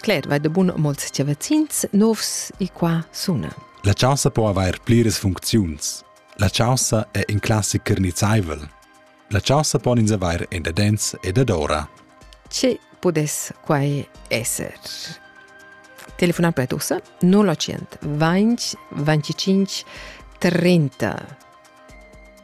Cler, vai da bun molts chavazins novs e qua suna. La chaussa po avair pliras funcziuns. La chaussa è in classic carnizzaivel. La chaussa pon ins avair en dadens e dadora. Ce pudess quai esser? Telefonar per tussa 000 25 35 30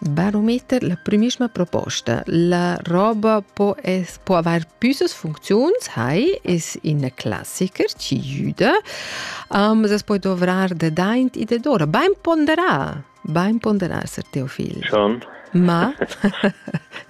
Barometer la primissima proposta. La roba po, es, po avair püssas funcziuns, hai, es ina classiker, ci jüda, um, es poi dovrar de daint e de dora. Bain ponderar, bain ponderar, Sir Teofil. Schon. Ma?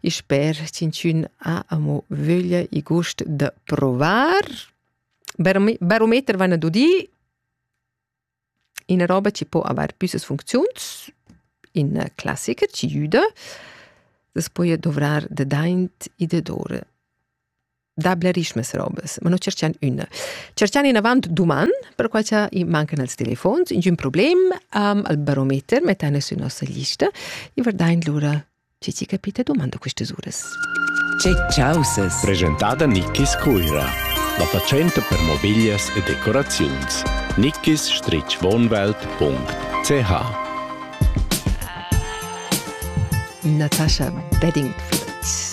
e sper ch'inchün ha amo vöglia e gust da provar. Barometer van ad udir ina roba che può avere più funzioni in classica ci aiuta, das puoi dovrar de daint e de dore. da blerischmes robes, ma no cerchian üna. Cerchian inavant duman, perquai cha i mancan els telefons, ingün problem, um, al barometer mettan sü nossa lista e verdain lura chi ci capita dumando quistas uras. Che chausas! Presentada Nickis Cuira. La fatschenta per mobiglias e decoraziuns. nickis-wohnwelt.ch Natasha Beddingfield